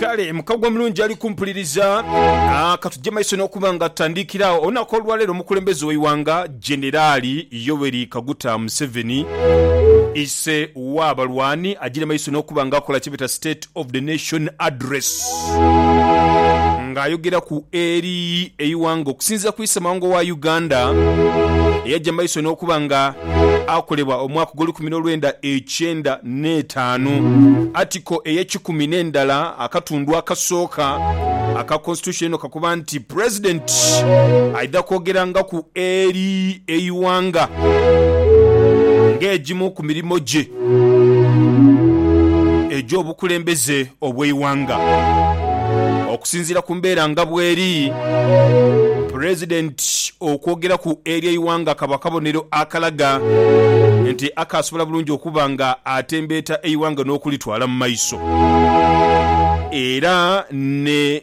Kale mukago omulungi ali kumpuliriza. Ah, katuje maiso n'okuba nga tutandikira agho olunaku olwaleero omukulembeze w'eighanga Generali Yoweri Kaguta Museveni ise w'abalwani agire maiso n'okuba nga akola kyebeeta State of the Nation Address nga ayogeraku eri eighanga okusinzira ku ise mawanga owa Uganda eyaja maiso n'okuba nga akolebwa omwaka ogw'olukumi n'olwenda ekyenda n'etaanu, Article ey'ekikumi n'endala akatundu akasooka aka Constitution eno kakoba nti President aidha kwogerangaku eri eighanga ng'egimu ku mirimo gye egy'obukulembeze. obw'eighanga. Okusinziira ku mbeera nga bweri, Pulezidenti okwogeraku eri eighanga kaba kabonero akalaga nti akaasobola bulungi okuba nga atembeeta eighanga n'okulitwala mu maiso era ne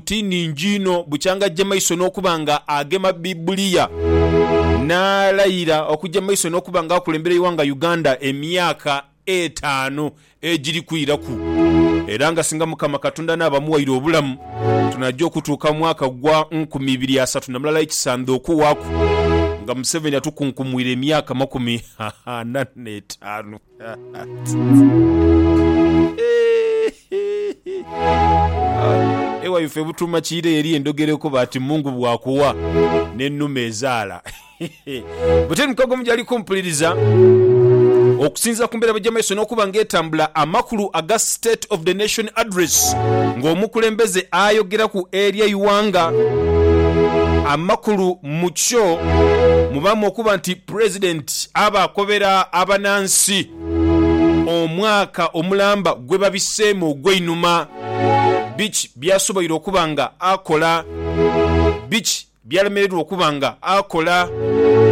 ti nnhingi inho bukyanga aggye maiso n'okuba nga agema Baibuliya n'alayira okugya mu maiso n'okuba nga akulembera eighanga Uganda emyaka etaanu egiri kwiraku era nga singa Mukama Katonda anaaba amughaire obulamu tunaja okutuuka mu mwaka gwa nkumi ibiri asatu na mulala ekisandha okuwaaku nga Museveni atukunkumwire emyaka makumi ana n'etaanu. Ewa ife butuuma kiire yeri endhogera ekoba ati Mungu bw'akuwa n'ennume ezaala. Buteri Mukagomu gyali kumpuliriza. Okusinziira ku mbeera bwegya maiso n'okuba nga etambula, amakulu aga State of the Nation Address ng'omukulembeze ayogeraku eri eighanga, amakulu mukyo mubaamu okuba nti President aba akobera abanansi omwaka omulamba gwebabiseemu ogweinhuma, biki byasoboire okuba nga akola, biki byalemererwa okuba nga akola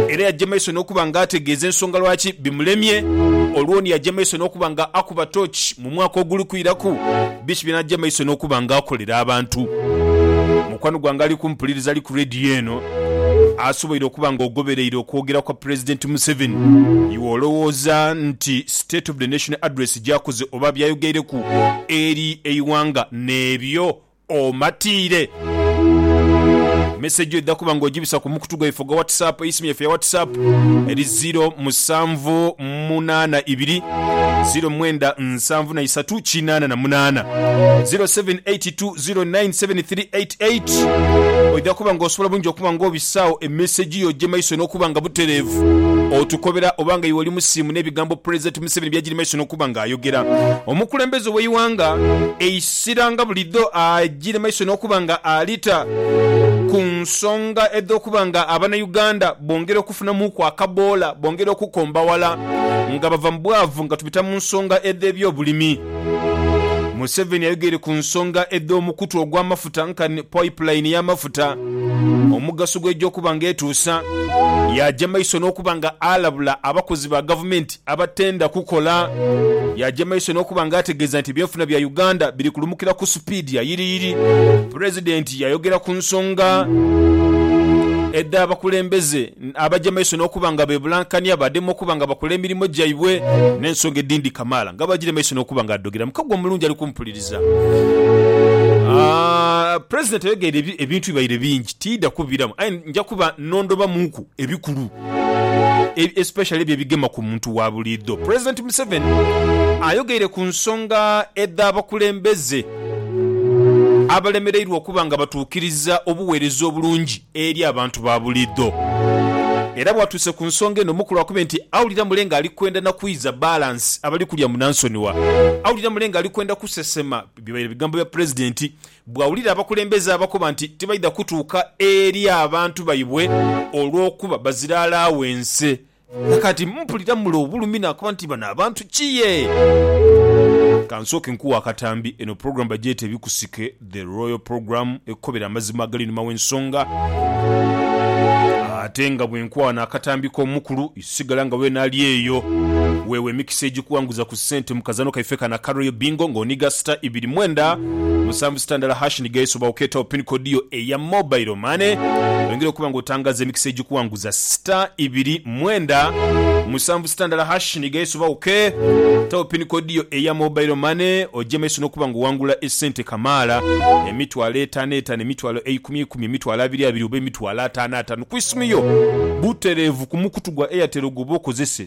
era yaja maiso nokuba nga ategeeza ensonga lwaki bimulemye olwo ni yaja maiso nokuba nga akuba tooki mu mwaka oguli kwiraku biki byanaja maiso nokuba nga akolera abantu. Mukwano gwange ali kumpuliriza ali ku leediyo eno asoboire okuba nga ogobereire okwogera kwa Pulezidenti Museveni. Iwe olowooza nti State of the Nation Address gy'akoze oba by'ayogeireku eri eighanga n'ebyo omatiire? Mesegi oidha kuba nga ogibisa ku mukutu gwaife ogwa WhatsApp, eisimu yaife eya WhatsApp eri ziro musanvu munaana ibiri, ziro mwenda nsanvu na isatu kinaana na munaana, ziro seven eight two. 097388 Oidha kuba nga osobola bulungi okuba nga obisaawo emesegi yo ogye maiso n'okuba nga butereevu otukobera oba nga iwe oli musiimu n'ebigambo Pulezidenti Museveni by'agiri maiso n'okuba nga ayogera. Omukulembeze w'eighanga eisira nga bulidho agire maiso n'okuba nga alita ku nsonga edh'okuba nga Abanauganda bongera okufunamuuku akaboola, bongera okukombawala nga bava mu bwavu nga tubita mu nsonga edh'ebyobulimi. Museveni ayogeire ku nsonga edh'omukutu ogw'amafuta nkani pipeline y'amafuta, omugaso gwe egy'okuba nga etuusa, yaaja maiso n'okuba nga alabula abakozi ba gavumenti abatenda kukola, yaaja maiso n'okuba nga ategeeza nti ebyenfuna bya Uganda biri kulumukira ku supiidi ya yiriyiri. Pulezidenti yaayogera ku nsonga edh'abakulembeze. Abaja maiso n'okuba nga beebulankania, baadema okuba nga bakola emirimo gyaibwe n'ensonga edhindi kamaala. Nga bw'agiire maiso n'okuba nga adhogerera, mukago omulungi ali kumupuliriza. Pulezidenti ayogeire ebintu bibaire bingi, tiidha kubiramu aye nja kuba n'ondhobamuku ebikulu especially ebyo ebigema ku muntu wa buliidho. Pulezidenti Museveni ayogeire ku nsonga edh'abakulembeze abalemereirwa okuba nga batuukiriza obuweereza obulungi. eri abantu ba buliidho. Era bwatuuse ku nsonga eno muku lwakube nti awulira mule nga ali kwenda na kwiiza balance abali kulya munansonigha. Awulira mule nga ali kwenda kusesema bibaire bigambo bya Pulezidenti bwawulira abakulembeze abakoba nti tibaidha kutuuka eri abantu baibwe olw'okuba bazira alaawense Nakati mpulira mule obulumi nakoba nti bano abantu ki ye? Kansooke nkuwe akatambi, eno program bagyeta Ebikusike, The Royal Program, ekukobera amazima agali einhuma w'ensonga. Ate nga bwenkwana akatambi k'omukulu, sigala nga wena ali eyo. Weewe emikisa egikuwanguza ku. Sente mu kazano kaife kano aka Royal Bingo nga oniga star ibiri mwenda musanvu star ndala hash niga eso oba okeetawo pin code yo eya mobile money oyongere okuba nga otangaaza emikisa egikuwanguza star ibiri mwenda musanvu star ndala hash niga eso oba oke tawo pin code yo eya mobile money oje maiso nokuba nga owangula esente kamaala emitwalo etaano etaano emitwalo eikumi eikumi emitwalo abiri abiri oba emitwalo ataano ataano ku isimu yo butereevu ku mukutu gwa Airtel gwoba okozese.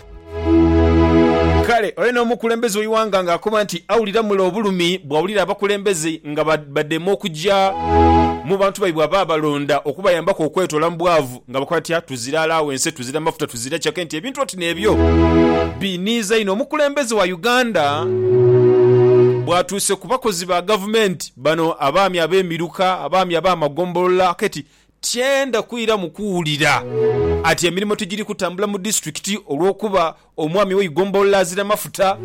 Kale oyo n'omukulembeze w'eighanga ng'akoba nti awulira mule obulumi bw'awulira abakulembeze nga badema okuja mu bantu baibwe abaabalonda okubayambaku okwetoola mu bwavu nga bakoba batya, tuzira alawense, tuzira mafuta, tuzira cake nti ebintu oti n'ebyo biiniiza inho. Omukulembeze wa Uganda bwatuuse ku bakozi ba gavumenti bano abaami ab'emiruka, abaami ab'amagombolola kati Tyenda kwiramu kuwulira ati emirimo tigiri kutambula mu disitulikiti olw'okuba omwami w'eigombolola azira mafuta.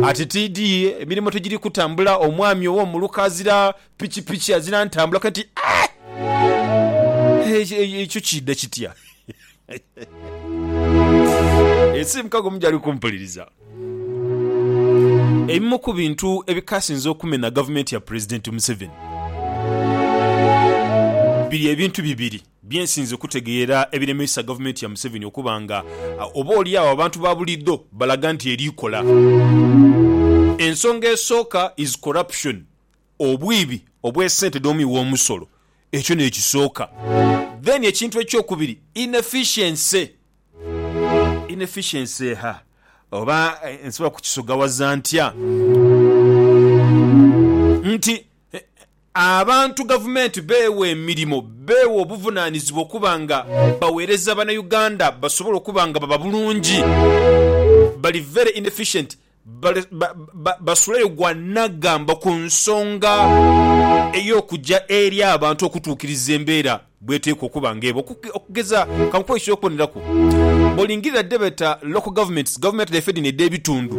Ati tiidhi emirimo tigiri kutambula, omwami ow'omuluka azira pikipiki, azira ntambula. Kati ekyo kiidha kitya? Ensi mukago mujali kumpuliriza. Ebimu ku bintu ebikasinze okumena gavumenti ya Pulezidenti Museveni biri ebintu bibiri bye nsinze okutegeera ebiremeisa gavumenti ya Museveni okuba nga oba olyagho abantu ba buliidho balaga nti eri kola. Ensonga esooka is corruption. Obwiibi obwe sente dho mwi womusolo ekyo nekisooka then ekintu ekyokubiri inefficiency inefficiency eha oba nsobola kukisogawaza ntya nti abantu gavumenti beewa emirimo beewa obuvunanizibwa okuba nga bawereza bana Uganda basobole okuba nga baba bulungi bali very inefficient Basuleyo gw'anaagamba ku nsonga ey'okuja eri abantu okutuukiriza embeera bw'eteekwa okuba ng'eba. Okugeza, ka nkuwe eky'okuboneraku, Bw'olingirira dhe beeta local governments, gavumenti dhaife dhino edh'ebitundu,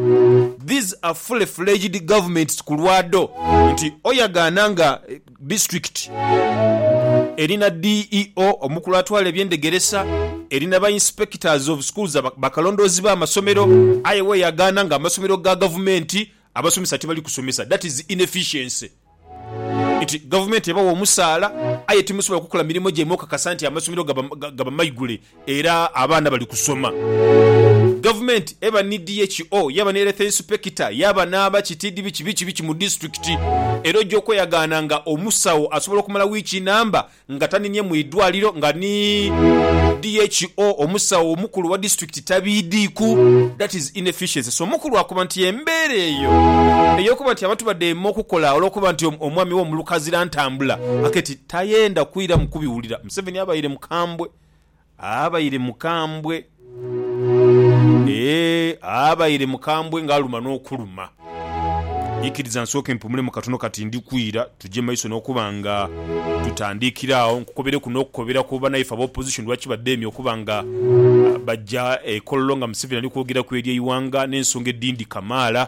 these are fully fledged governments ku lwa dho nti oyagaana nga District eri na DEO, omukulu atwala eby'endhegeresa, eri na ba Inspectors of Schools, bakalondoozi b'amasomero, aye weyagaana nga amasomero ga gavumenti abasomesa tibali kusomesa, that is inefficiency. Nti gavumenti ebawa omusaala aye timusobola kukola mirimo gyaimwe okakasa nti amasomero gaba maigule. Era abaana bali kusoma. Gavumenti eba ni DHO, yaba ni Health Inspector, yaba n'aba ki TDB ki biki biki mu disitulikiti. Era oja okweyagaana nga omusawo asobola okumala wiiki namba nga taninye mu idwaliro nga ni DHO, omusawo omukulu owa disitulikiti, tabiidiiku. That is inefficiency. So omukulu akoba nti embeera eyo ey'okuba nti abantu badheeme okukola olw'okuba nti omwami wo mulukazira ntambula, aketi tayenda kwiramu kubiwulira. Museveni abaire mukambwe. Abaire mukambwe, ee, abaire mukambwe ng'aluma n'okuluma. Ikiriza nsooke mpumulemu katono kati ndi kwira, tuje maiso n'okuba nga tutandiikira agho. Nkukobereku n'okukobera ku banaife aba opposition lwaki badheemye okuba nga baja e Kololo nga Museveni ali kwogeraku ery'eighanga n'ensonga edhindi kamaala.